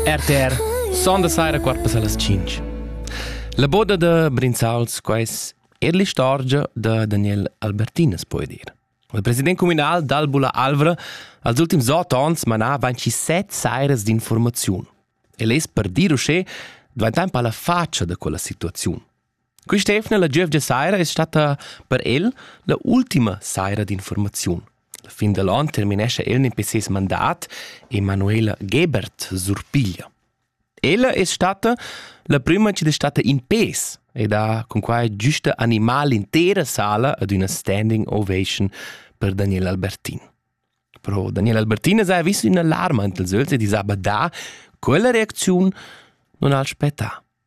RTR sonda saira quarpa las 5. La boda da Brinzauls quais er l'istorgia da Daniel Albertinas puoi dir. Il president comunal d'Albula Alvra als ultims otg ans manà 27 sairas d'informaziun. El es per dir uschè dvaintan pa la faccia da quella situaziun. Quist'eivna la giövgia saira es statta per el la ultima saira d'infuormaziun. La fin da l'on terminescha el nempe seis mandat e Manuela Gebert surpiglia. Ella es statta la prüma chi'd es statta in pês ed ha cun quai güsta animà l'intera sala ad üna standing ovation per Daniel Albertin. Però Daniel Albertin es haja vis ün'alarma int els ögls ed es ha badà, quella reacziun non al spettà.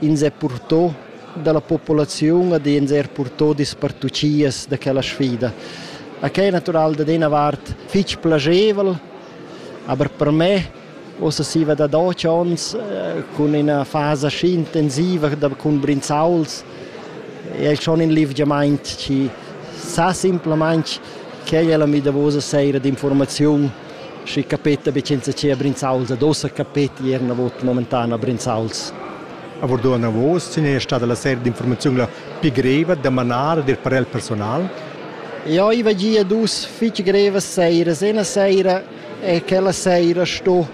Ins è purtò dalla populaziun ad ins er purtò dispartuchias da quella sfida. A quai è natural dad ina vart fitg plagevel, aber per me Ossa siva da doc ons eh, cun ina fasa schi intensiva da, cun brinzauls è schon in livgiamaint chi sa simplamaing quai è la mi davosa seira d'informaziun Schi capeta be ch'insatgea Brinzauls ad ossa capeti er navot momentana Brinzauls. A Vordon Navos sin è stada la seria d'informaziun la pi greva da manar ed ir per el personal. Eu iva gia dus fich grevas seiras. Ena seira è quella seira sto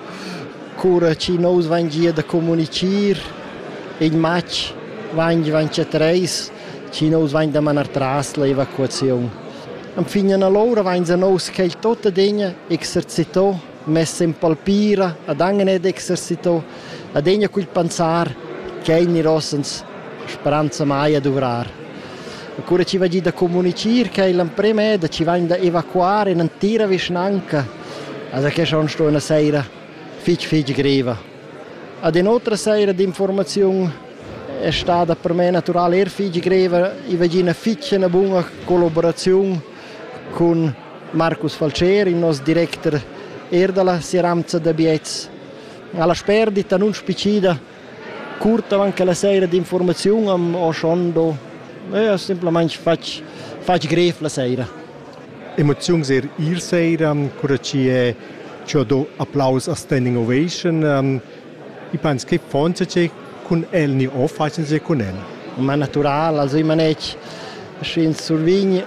cura chi nous van gia da comunichir in match van van tre treis chi nous vain da manar tras l'evacuaziun. Enfin allora vainsa nous quel tot adegna exercito, mess in palpira, adangane ed exercito, adegna cul pensar ch'el nirossans speranza mai a duvrar. Cura chi va gi da comunichir che l'amprema è da ci vain da evacuare in antira vischnanca, also che schon sto una seira fich fich greva. Ad in'otra saira d'informaziun è stada per me natural er fitg greva. I vegì ina fitg ina buna collaboraziun cun Marcus Falceri, il nostro director er dalla Sieramza da Biets. Alla sperdita non spicida curta anche la sera di informazione am ho schon do e ho semplicemente fatg fatg grev la sera. Emoziuns er ir sera, cura chi è chi ho do applaus a Standing Ovation. Ich penso, che fanze c'è cun el ni o facen c'è cun el. Ma natural, also ich meine, sch'ins survign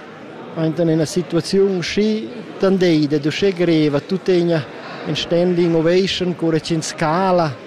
in una situazione schi tandei, de uscè greva, tu tegna in standing ovation, cura c'in scala,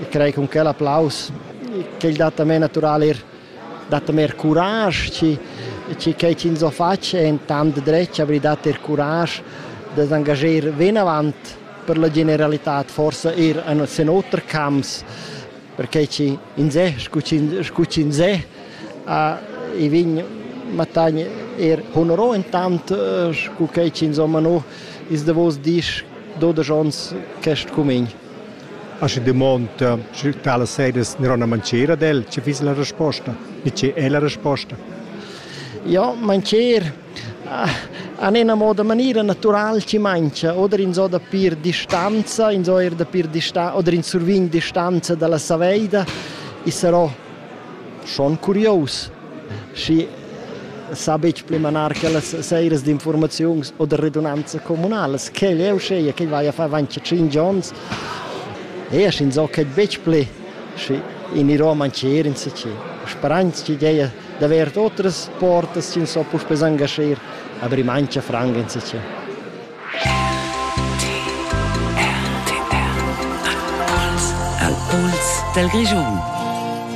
e crei cun quel applaus ch'el dat a me natural er dat a me er curage chi chi quei ch'ins ho fatg è in tant dretg avrei dat er curage da s'engager vinavant per la generalità forsa er sen oter camps perché chi ins è scu scu ch'ins è e vegn mattagn er honoro intant scu quei ch'ins ho mano is davos dis dodesch ons quest cumegn Aschi dumonda, sche talas sedas neron a mancher ad el, che fiss la resposta, ni che è la resposta? Ja, mancher an ena moda maniera natural ci mangia, oder in so da pir distanza, in so er da pir distanza, oder in survign distanza dalla saveida, i sarò schon curios schi sa betg pli manar quellas seiras d'informaziuns o da redunanza communalas quel eu scheia ch'el vaia far avanti tschinch ons e asch insocca betg pli schi gnirò a mancher insatgi sperains chi gea d'avair otras portas chi so puspè s'angascher a vrir mancha franca insatgi Al puls dal Grischun